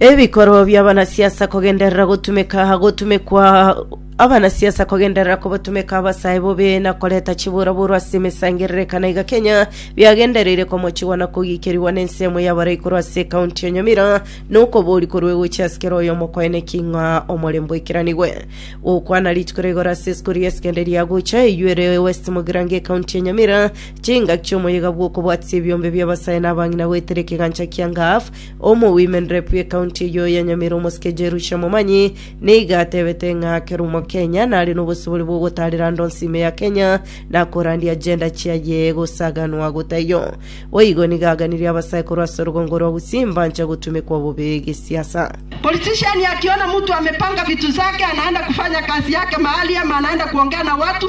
Ebikoro bi'abanasiasa kogenderera gotumeka gotumekwa abanasiasa kogenderera kobotumeka abasae bobe na koreta chiburaburu ase emesangererekano iga Kenya biagendereire komochigwa na kogikerigwa n'ensemo y'abare igoro ase ekaunti ya Nyamira na okobori korwa egochi ase kera oyomo koeneki ng'a omorembe oikeranigwe. Gokwana rituko rigoro ase esukuru y'esekenderia ya gocha eywo ere West Mugirango ekaunti ya Nyamira Chingaki chi'omoyega bw'okobwatisia ebiombe bi'abasae na abang'ina goetera ekegancha kia Ngaf, Omowomen Rep y'ecounty eyio ya Nyamira omosike Jerusha Momanyi, nigo atebete ng'a Kerumo Kenya nare nobosibore bw'ogotaarera ande onsi ime ya Kenya na korandia agenda chiaye gosaganwa gotaiyo. Boigo nigo aganirie abasae korwa ase orogongo rwa Gusii mbancha gotumekwa bobe gesiasa. Politician akiona mtu amepanga vitu zake anaenda kufanya kazi yake mahali ama anaenda kuongea na watu.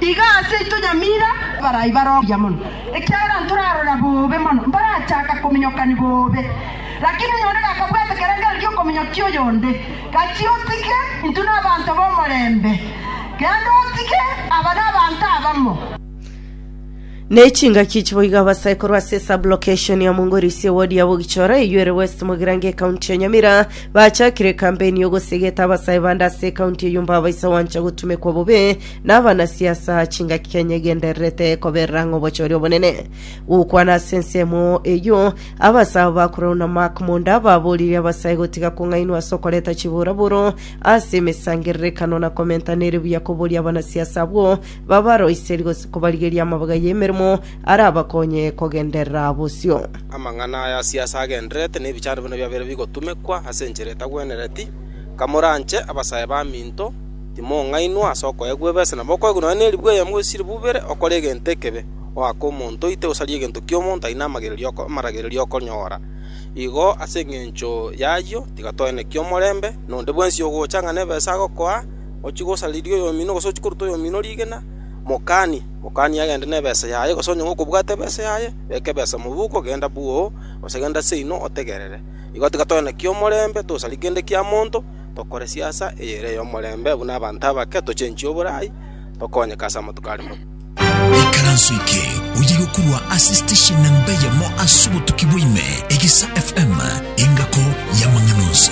Iga ase intwe nyamira barai baroria mono, ekiagera ntorarora bobe mono mbarachaka kominyokani bobe. Lakini oyonde gakabwate kerengerio gi'okominyokia oyonde, gachia otige intwe nabanto b'omorembe, genda otige aba nabanto abamo. Ne chingaki echi boigo abasaikoro ase esablokeshoni ya Mungori ase ewodi ya Bogichora eyio ere West Mogirango ekaunti ya Nyamira bachakire ekampeni y'ogosegeta abasae bande ase ekaunti eyio mbabaisa gwancha gotumekwa bobe na abanasiasa aa chingaki Kenya egendererete koberera ng'a obochori obonene. Gokwana ase ensemo eyio abasae abo bakorerwa na Mark Monda baboririe abasae gotiga kong'ainwa ase okoreta chiburaburo ase emesangererekano na komentana ere buya koboria abanasiasa abwo babaroiserie gose kobarigeria amabaga y'emeremo arabakonye kogenderera bosio. Amang'ana aya Asiasi agendererete nebichando buna biabere bigotumekwa ase enchera etagwenereti, Kamoranche abasae baminto, timong'ainwa ase okoegwa ebesa, na mokoegwa nonya neribu eyemo gose chiribu ibere, okore egento ekebe, oake omonto oite gosaria egento ki'omonto aye namagererio amaragererio okonyora. Igo ase engencho y'ayio tiga toeneki omorembe, na onde bwensi ogocha ng'a nebesa agokoa, ochie gosariria oyomino, gose ochie koruta oyomino rigena, mokanie. Mokanie agende nebesa yaye, gose onye gokobwate ebesa yaye, beka ebesa mobuko, genda bua oo, gose genda seino otegerere. Igo tiga toe na ki'omorembe, tosarie kende kia monto, tokore siasa eyere ey'omorembe buna abanto abake, tochenchie oborai, tokonyeke ase amatuko are moke. Ikaranso eke oyiga korwa ase station namba eyemo ase obotuki bwa ime, Egesa FM, engako y'amang'ana onsi.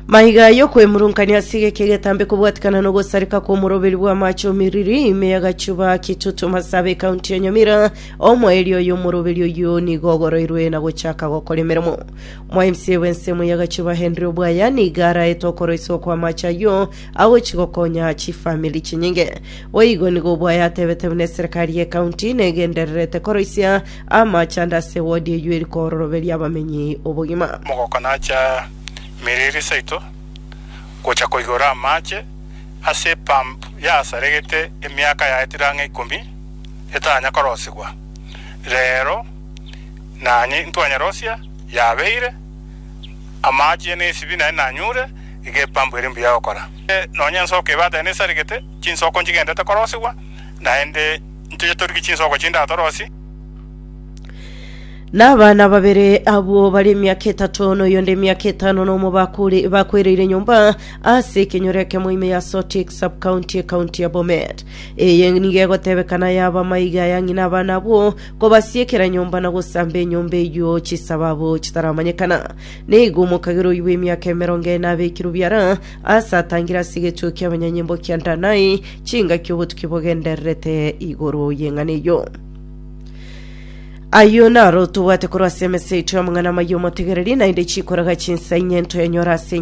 Maiga y'okwemurunkania ase egeke egetambe kobwatikana n'ogosareka kw'omoroberi bw'amache omiriri ime y'agachuba kitutu masabe ekaunti ya Nyamira omoerio oyo omoroberi oyo nigo ogoroirwe na gochaka gokora emeremo mwa MCA bw'ensemo y'agachuba Henry Obwaya niga araete okoroiswa kw'amache ayio agochi gokonya chifamili chinyinge boigo nigo Obwaya atebete buna eserekari y'ekaunti negendererete koroisia Amachando ase wodi eyio eri koororoberia abamenyi obogima. Mogokanacha emeriri saito gocha koigora amache ase epump yasaregete emiaka yaetire ang'e ikomi etanya korosigwa. Rero nanye intwanyerosia yabeire amache na esibi naye nanyure iga epump ere mbuya gokora. Nonya ensoke ebatene esaregete chinsoko nchigendete korosigwa naende. Ntoche torigie chinsoko chinde aa torosie. Na abana babere abwo bare emiaka etato na oyonde emiaka etano nomo bakure- bakwereire nyomba ase ekenyoro ekemo ime ya Sotik sub county ekaunti ya Bomet. Eye nigo egotebekana yaba amaiga ya ng'ina abana abwo kobasiekera nyomba na gosamba enyomba eyio chisababu chitaramanyekana. Nigo omokagera oyio bw'emiaka emerongo ene abekirwe biara Ase atangire ase egechuo ki'abanyanyimbo kia Danai, chingaki obotuki bogendererete igoro y'eng'ana eyio. Ayio naro tobwate korwa ase emesa yaito y'amang'ana amaya omotegereri, naende chikoraga chinsa inye ntoyanyora ase